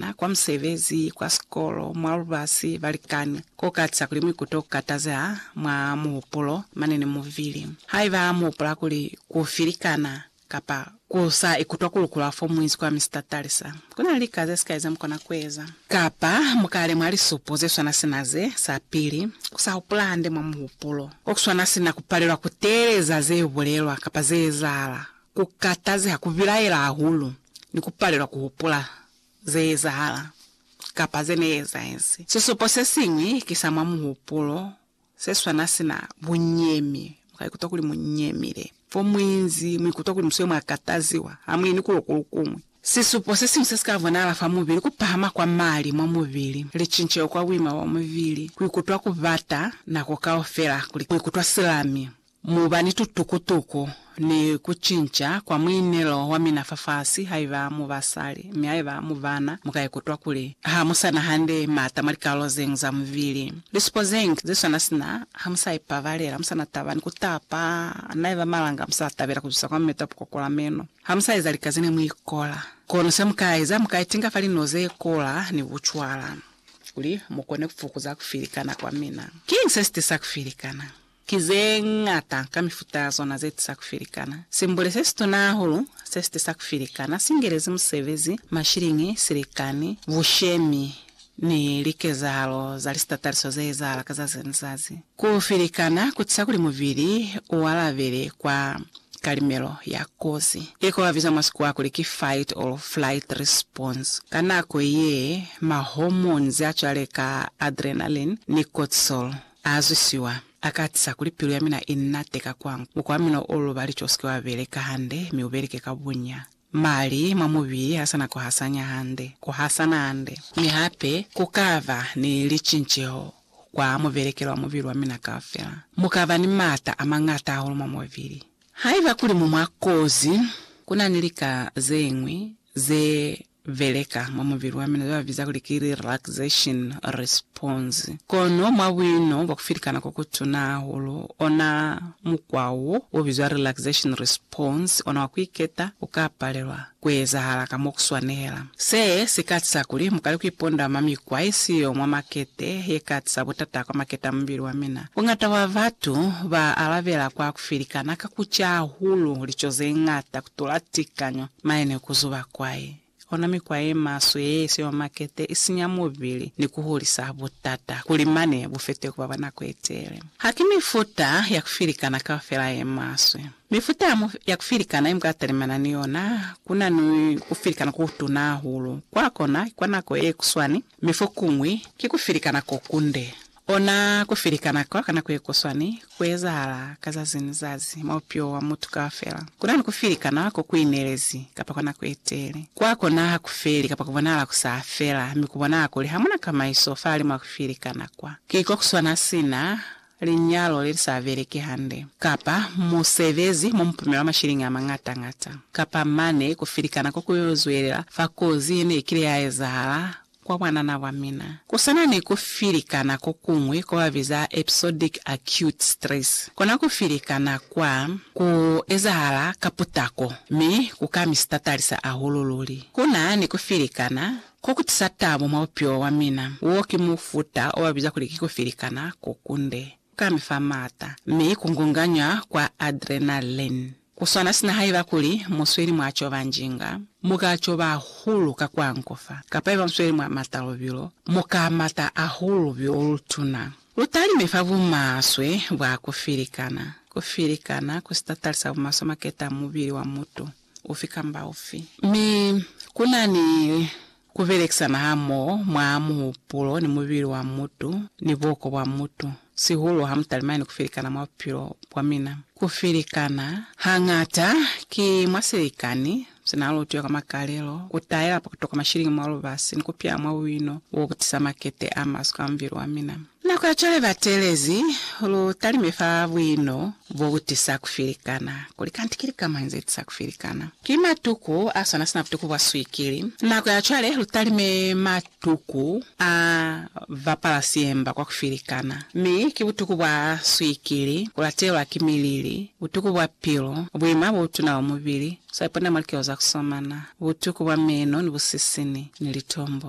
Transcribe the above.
Na kwa musebezi, kwa sikolo, mwa lubasi, balikani. Ku katiza kuli mu ikute ku katazeha mwa muhupulo, mane ni mubili. Haiba mu hupula kuli ku filikana kapa ku sa ikutwa ku lukulwa fo mu inzi kwa Mister Talisa, ku na ni lika ze sikai ze mu kona ku eza. Kapa mu ka lemuha lisupo ze swana sina ze, sa pili, ku sa hupula hande mwa muhupulo. Ko ku swana sina ku palelwa ku teeleza ze bulelwa kapa ze ezahala. Ku katazeha, ku bilaela hahulu, ni ku palelwa ku hupula ze ezahala kapa ze ne ezahezi. Sisupo se siñwi ki sa mwa muhupulo se swana sina bunyemi. Mu ka ikutwa kuli mu nyemile. Fo mu inzi, mu ikutwa kuli mu swile mwa kataziwa, ha mu yeni kulo ku lu kuñwi. Sisupo se siñwi se si ka bonahala fa mubili, ku pahama kwa mali mwa mubili, licinceho kwa buima bwa mubili, ku ikutwa ku bata nako kaufela, ku ikutwa silami, Mu ba ni tutukutuku ni ku cinca kwa muinelo wa mina fafasi haiba mu basali, mi haiba mu bana, mu ka ikutwa kuli ha mu sa na hande maata mwa likalolo zeñwi za mubili. Lisupo zeñwi ze swana sina, ha mu sa ipabalela, mu sa na taba ni ku tapa, na iba malanga mu sa tabela ku zwisa kwa mumeto wa pukokula meno, ha mu sa eza lika zene mu ikola. Kono se mu ka eza, mu ka itinga fa linulo ze kola ni bucwala, kuli mu kone ku fukuza ku filikana kwa mina. Kiñi se si tisa ku filikana? Ki ze ñata ka mifuta ya zona ze tisa ku filikana. Simbule se situna hahulu se si tisa ku filikana si ngelezi musebezi, mashiliñi, silikani, bushemi, ni likezahalo za lisitataliso ze ezahala ka zazi ni lizazi. Ku filikana ku tisa kuli mubili u alabele kwa kalimelo ya kozi, ye ko ba biza mwa Sikuwa kuli ki fight or flight response. Ka nako ye, ma hormones a cwale ka adrenaline ni cortisol A zwisiwa, a katisa kuli pilu ya mina i nate ka kwangu. Mukwa wa mina o luba lico u sike wa beleka hande, mi u beleke ka bunya. Mali mwa mubili ha sa na ku hasanya hande, ku hasana hande. Mi hape, ku ka ba ni licinceho kwa mubelekelo wa mubili wa mina kaufela. Mu ka ba ni m'ata a mañata hahulu mwa mubili. Haiba kuli mu mwa kozi, ku na ni lika ze ñwi ze beleka mwa mubili wa mina zebabiza kuli ki relaxation response. Kono mwa buino bwa kufilikana kokutuna hahulu, ona mukwa wo ubizwa relaxation response, ona wa kuiketa, uka palelwa kuezahala ka mo kuswanela. Se si ka tisa kuli mukale kuiponda mwa mikwa yesiyo mwa makete yeka tisa butata kwa makete a mubili wa mina. Buñata bwa batu ba alabela kwa kufilikana ka kuca hahulu lico zeñata kutula tikanyo. Maye ni ku zuba kwai, ona mikwa ye maswe ye ye siwa makete, i sinya mubili, ni ku hulisa butata kuli mane bu fete ku ba bwa nako ye tele. Ha ki mifuta ya ku filikana kaufela ye maswe. Mifuta ya, ya ku filikana ye mu ka talimana ni yona, ku na ni ku filikana ko kutuna hahulu. Kwa kona, ki kwa nako ye kuswani, mi fokuñwi, ki ku filikana ko kunde. Ona ku filikana kwa ka nako ye kuswani ku ezahala ka zazi ni zazi mwa bupilo wa mutu kaufela. Ku na ni ku filikana ko ku inelezi kapa kwa nako ye tele. Kwa kona ha ku feli kapa ku bonahala ku sa fela, mi ku bonahala kuli ha mu na kamaiso fahalimwa ha ku filikana kwa. Ki ko ku swana sina linyalo le li sa beleki hande, kapa musebezi mo mu pumelwa mashiliñi a mañata ñata, kapa mane ku filikana ko ku yo zwelela fa kozi ye ne i kile ya ezahala kwa bwanana bwa mina. Ku sa na ni ku filikana ko kuñwi ko ba biza episodic acute stress. Kona ku filikana kwa ku ezahala ka putako mi ku ka mi sitatalisa hahulu luli. Ku na ni ku filikana ko ku tisa tabo mwa bupilo bwa mina. Wo ki mufuta o ba biza kuli ki ku filikana ko kunde. Ku ka mi fa maata mi ku ngunganywa kwa adrenaline. Ku swana sina haiba kuli mu sweli mwa coba njinga, mu ka coba hahulu ka ku angufa, kapa haiba mu sweli mwa mata lubilo, mu ka mata hahulu lubilo lu tuna. Lu talime fa bumaswe bwa ku filikana. Ku filikana ku sitatali sa bumaswe maketa a mubili wa mutu ufi kamba ufi. Mi ku na ni Ku belekisana hamoho mwa muhupulo ni mubili wa mutu ni buko bwa mutu, sihulu ha mu talimani ku felikana mwa bupilo bwa mina. Ku felikana, hañata, ki mwa silikani se na lutwe kwa makalelo, ku taela pa ku toka mashilingi mwa lubasi ni ku pya mwa buino bo bu tisa makete a maswe kwa mubili wa mina. Nako ya cwale ba teelezi lu talime fa buino bo bu tisa ku filikana, kuli kanti ki lika mañi ze tisa ku filikana? Ki matuku a swana sina butuku bwa swikili. Nako ya cwale lu talime matuku a ba pala siemba kwa ku filikana, mi ki butuku bwa swikili, ku latelwa ki milili, butuku bwa pilu, buima bo butuna bwa mubili, swaipona mwa likeo za ku somana, butuku bwa meno ni busisini, ni litombo.